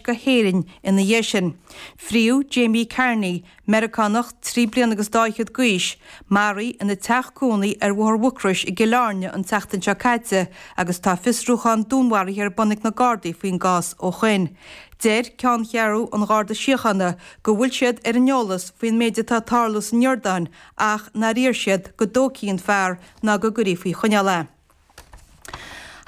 go hÉirinn ina dhiaidh sin. Fríothadh Jamie Carney, Meiriceánach trí bliana agus dhá fhichead d'aois, marbh ina teach cónaí ar Bhóthar Mhucrois i gCill Airne an tseachtain seo caite agus tá fiosrúchán dúnmharaithe ar bun ag na Gardaí faoin gcás ó shin. Deir ceanncheathrú an Gharda Síochána go bhfuil siad ar an eolas faoin méid atá tarlaithe san Iordáin ach nár iarr siad go dtógfaí an fear ná go gcuirfí faoi choinneáil é.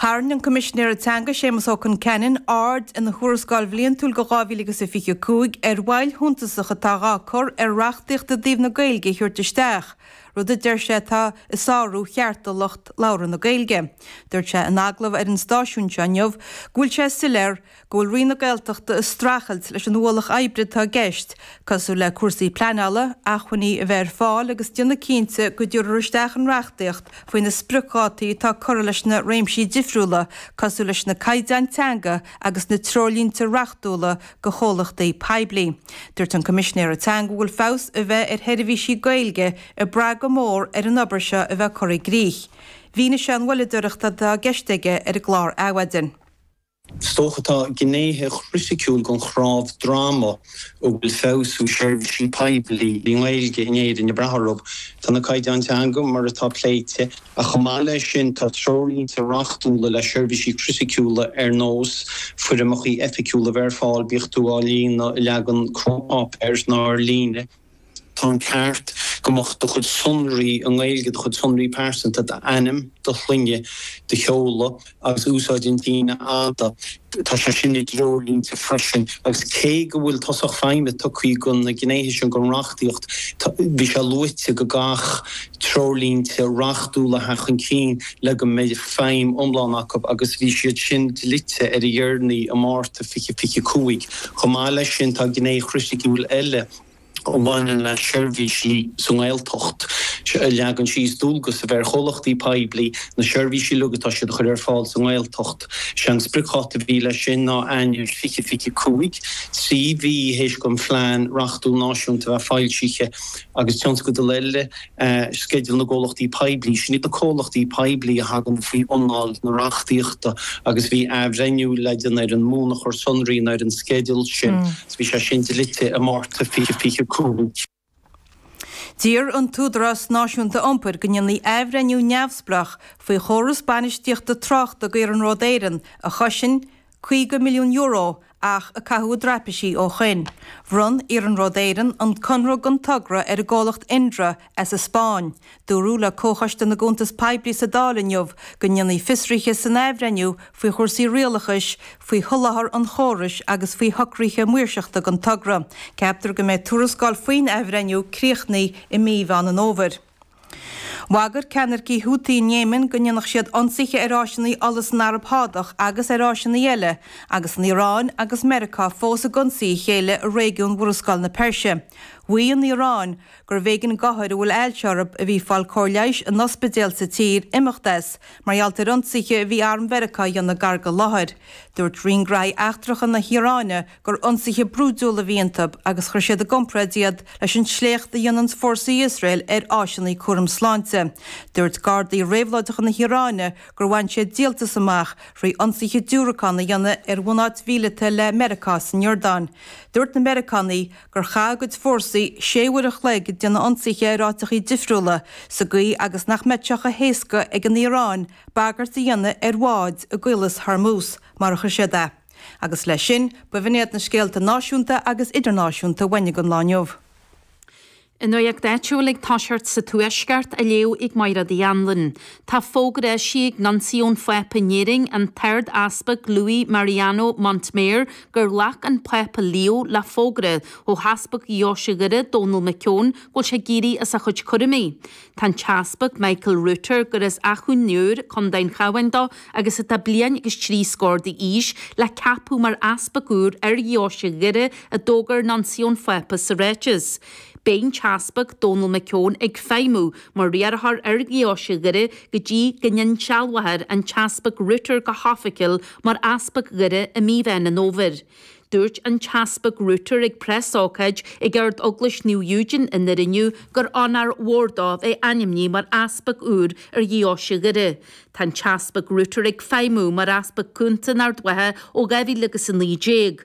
Tharraing an Coimisinéir Teanga, Séamus Ó Concheanainn, aird ina Thuarascáil Bhliantúil do 2025 ar mhoill shuntasach atá dhá cur ar reachtaíocht i dtaobh na Gaeilge a thabhairt isteach, rud a deir sé atá ag sárú chearta lucht labhartha na Gaeilge. Dúirt sé in agallamh ar an stáisiún seo inniu go bhfuil sé soiléir go. go bhfuil Roinn na Gaeltachta ag streachailt leis an ualach oibre atá i gceist, cosúil le cúrsaí pleanála, acmhainní a bheith ar fáil agus déanamh cinnte go dtabharfar isteach an reachtaíocht faoi na spriocdhátaí atá curtha leis na réimsí difriúla cosúil leis na caighdeáin teanga agus na treoirlínte reachtúla do chomhlachtaí poiblí. Dúirt an Coimisinéir Teanga go bhfuil feabhas a bheith ar sheirbhísí Gaeilge ag brath go mór ar an obair seo a bheith curtha i gcrích. Mhínigh sé an mhoilleadóireacht atá i gceist aige ar an gclár Adhmhaidin. Is dócha tá gnéithe criticiúla den chreat frámaithe a bhfuil feabhsú seirbhísí poiblí i nGaeilge in Éirinn ag brath orthu. Tá na caighdeáin teanga mar atá pléite, ach chomh maith leis sin tá treoirlínte reachtúla le seirbhísí criticiúla ar nós foirmeacha oifigiúla a bheith ar fáil, bíodh tú á líonadh i leagan cóip pháipéir nó ar líne. Tá an ceart go mbeadh do chuid sonraí i nGaeilge, do chuid sonraí pearsanta, d'ainm, do shloinne, do sheoladh agus úsáid an tsíneadh fhada, tá sé sin i dtreoirlínte freisin agus cé go bhfuil tosach feidhme tugtha do na gnéithe sin den reachtaíocht, bhí sé luaite go gcaithfeadh treoirlínte reachtúla a theacht chun cinn le go mbeidh feidhm iomlán acu agus bhí siad sin dlite ar a dheireanaí i Márta 2025. Chomh maith leis sin, tá gné chriticiúil eile. a bhaineann le seirbhísí sa nGaeltacht, a leagann síos dualgas a bheith ar chomhlachtaí poiblí na seirbhísí uilig atá siad a chur ar fáil sa nGaeltacht. Sé an spriocdháta a bhí leis sin ná Eanáir 2025, trí mhí théis an phlean reachtúil náisiúnta a bheith foilsithe agus tionscadal eile sceideal na gcomhlachtaí poiblí. Sin iad na comhlachtaí poiblí a thagann faoi anáil na reachtaíochta agus bhí athbhreithniú le déanamh ar an mbunachar sonraí nó ar an sceideal sin agus bhí sé sin dlite i Márta 2025. D'iarr an tÚdarás Náisiúnta Iompair go ndéanfaí athbhreithniú neamhspleách faoi chóras bainistíochta tráchta do Iarnród Éireann a chosain €50 milliún ach a caitheadh i dtraipisí ó shoin. Bhronn Iarnród Éireann an conradh don togra ar an gcomhlacht Indra as an Spáinn. Dúradh le Comhchoiste na gCuntas Poiblí sa Dáil inniu go ndéanfaí fiosruithe san athbhreithniú faoi chúrsaí rialachais, faoi sholáthar an chórais agus faoi shocruithe maoirseachta don togra. Ceaptar go mbeidh tuarascáil faoin athbhreithniú críochnaithe i mí Mheán an Fhómhair. Bhagair ceannaircigh Houthi in Éimin go ndéanfadh siad ionsaithe ar áiseanna ola san Araib Shádach agus ar áiseanna eile, agus an Iaráin agus Meiriceá fós ag ionsaí a chéile i réigiún Mhurascaill na Peirse. Mhaígh an Iaráin gurbh éigean d'othair a bhfuil ailse orthu, a bhí ag fáil cóir leighis in ospidéal sa tír, imeacht as, mar gheall ar ionsaithe a bhí Arm Mheiriceá a dhéanamh gar don láthair. Dúirt Roinn Graithí Eachtracha na hIaráine gur ionsaithe brúidiúla a bhí iontu agus chuir siad i gcomparáid iad leis an sléacht a dhéanann fórsaí Iosrael ar áiseanna cúraim sláinte. Dúirt gardaí réabhlóideacha na hIaráine gur bhain siad díoltas amach trí ionsaithe diúracán a dhéanamh ar bhunáit mhíleata le Meiriceá san Iordáin. Dúirt na Meiriceánaigh gur chaith a gcuid fórsaí sé uair an chloig ag déanamh ionsaithe ar áiteacha difriúla sa gcaoi agus nach mbeadh sé chomh héasca ag an Iaráin bagairt a dhéanamh ar bháid i gCaolas Hormuz, mar a chuir siad é. Agus leis sin, b'in iad na scéalta náisiúnta agus idirnáisiúnta a bhain ag an lá inniu. An nuacht áitiúil ag tosacht sa Tuaisceart á léamh ag Mairéad Uí Anluain. Tá fógra eisithe ag Nuncio an Phápa in Éirinn, an tArd-Easpag Luis Mariano Montemayor, gur ghlac an Pápa Leo le fógra ó Easpag Dheoise Dhoire, Donal McKeown, go bhfuil sé ag éirí as a chuid cúraimí. Tá an tEaspag Michael Router, gur as Achadh an Iúir, Co. an Chabháin dó agus atá bliain agus trí scór d'aois, le ceapadh mar easpag úr ar dheoise Dhoire, a d'fhógair Nuncio an Phápa sa ráiteas. Beidh an tEaspag Donal McKeown ag feidhmiú mar riarthóir ar dheoise Dhoire go dtí go n-insealbhófar an tEaspag Router go hoifigiúil mar Easpag Dhoire i mí Mheán an Fhómhair. Dúirt an tEaspag Router ag preasócáid ag Ard-Eaglais Naomh Eugene i nDoire inniu gur onóir mhór dó a bheith ainmnithe mar Easpag úr ar Dheoise Dhoire. Tá an tEaspag Router ag feidhmiú mar Easpag Cúnta in Ard Mhacha ó 2019.